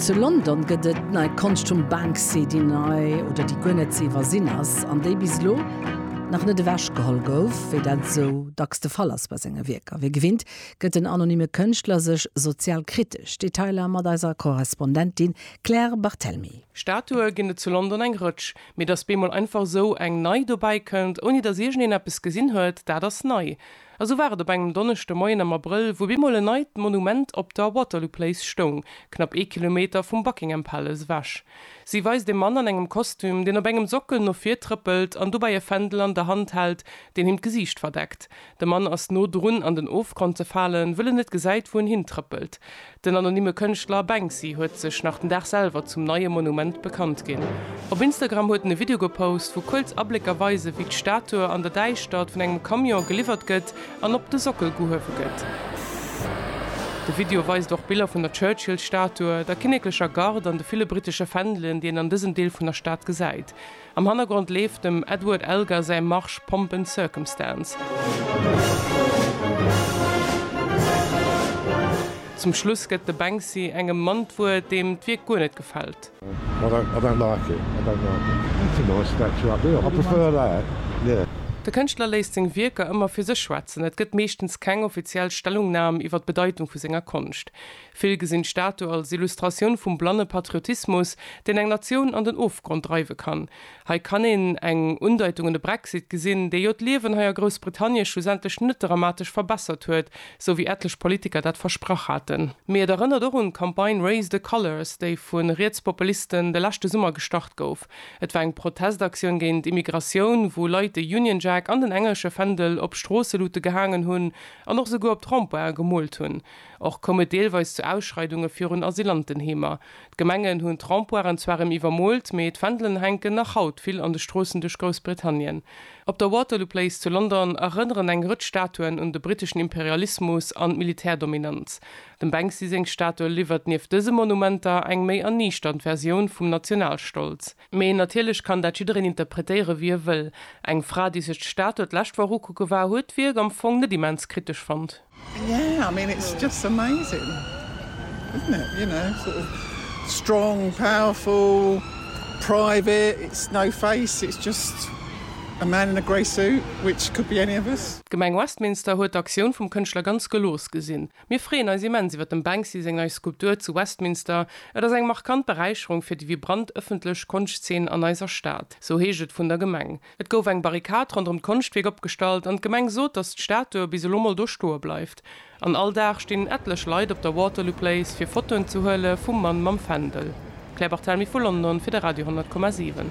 Zu London gëtt et nei Konscht vum Banksy, déi nei oder déi guer net ze iwwersinn ass, an déi bis elo nach net ewech geholl gouf, wéi dat esou dacks de Fall ass bei senge Wierker. Wéi gewinnt gëtt den anonyme Kënschtler sech sozial kritesch. Detailer mat eiser Korrespondentin Claire Barthelmy. Statue ginn et zu London eng Rëtsch, mee datt bemol einfach esou eng nei dobäi kënnt, ouni datt iergend een eppes gesinn huet, dat ass nei. A sou war et op engem Donneschdemoien am Abrëll, wou bemol en neit Monument op der Waterloo Place stoung, knapp ee Kilometer vum Buckingham Palace ewech. Si weist e Mann an engem Kostüm, deen op engem Sockel no vir trëppelt an dobäi e Fändel an der Hand hält, deen him d'Gesiicht verdeckt. De Mann ass no drun an den Ofgrond ze falen, wëll en net gesäit, wou en hintrëppelt. Den anonymme Kënschtler Banksy huet sech nach den Dag selwer zum neie Monument bekannt ginn. Op Instagram huet en e Video gepost, wou kuerz Ablécker weisen, wéi d'Statue an der Däischtert vun engem Camion geliwwert gëtt an op de Sockel gehuewe gëtt. De Video weist och Biller vun der Churchill-Statue, der kinneklecher Garde an de ville brittesche Fändelen, déi een an dësem Deel vun der Stad gesäit. Am Hannergrond leeft dem Edward Elgar säi Marsch Pomp and Circumstance. Zum Schluss gëtt de Banksy engem Mann d'Wuert, deem d'Wierk guer net gefält. De Kënschtler léisst seng Wierker ëmmer fir sech schwätzen, et gëtt meeschtens keng offiziell Stellungnam iwwer d'Bedeitung vu senger Konscht. Vill gesinn d'Statu als Illustratioun vum blanne Patriotismus, deen eng Natioun an den Ofgrond dreiwe kann. Hei kann een eng Undeitung un de Brexit gesinn, dee jo d'Liewen hei a Groussbritannie schlussendlech net dramatesch verbessert huet, sou wéi etlech Politiker dat versprach haten. Mee et erënnert och un d'Campagne Raise the Colours, déi vu Rietspopulisten de leschte Summer gestart gouf. Et war eng Protestaktioun géint Immigratioun, wou Leit de Union Jack an den englesche Fändel op Stroosselute gehaangen hunn an och esouguer op d'Rond-pointen gemoolt hunn. Och koum et deelweis zu Ausschreidunge virun Asylantenheemer. D'Gemengen hunn d'Rempoiren zwar rem iwwermoolt, mee d'Fändelen hänken nach haut vill an de Stroossen duerch Groussbritannien. Op der Waterloo Place zu London erënneren eng Rëtsch Statuen un de briteschen Imperialismus an d'Militärdominanz. Dem Banksy seng Statue liwwert nieft dëse Monumenter eng méi erniichternd Versioun vum Nationalstolz. Mee natierlech kann dat jiddereen interpretéiere wéi e wëll. Eng Fra, déi sech d'Statue d'lescht Woch ukucke war, huet d'Wierk am Fong net immens kritesch fonnt. D'Gemeng Westminster huet d'Aktioun vum Kënschtler ganz gelooss gesinn. Mir freeën eis immens iwwer dem Banksy seng nei Skulptur zu Westminster. Et ass eng markant Beräicherung fir déi vibrant ëffentlech Konschtzeen an eiser Stad, sou heescht et vun der Gemeng. Et gouf eng Barrikad ronderëm d'Konschtwierk opgestallt an d'Gemeng sot, datt d'Statue bis elo mol do stoe bleift. An all Dag stinn etlech Leit op der Waterloo Place fir Fotoen ze huele vum Mann mam Fändel. Claire Barthelmy vu London fir de Radio 10,7.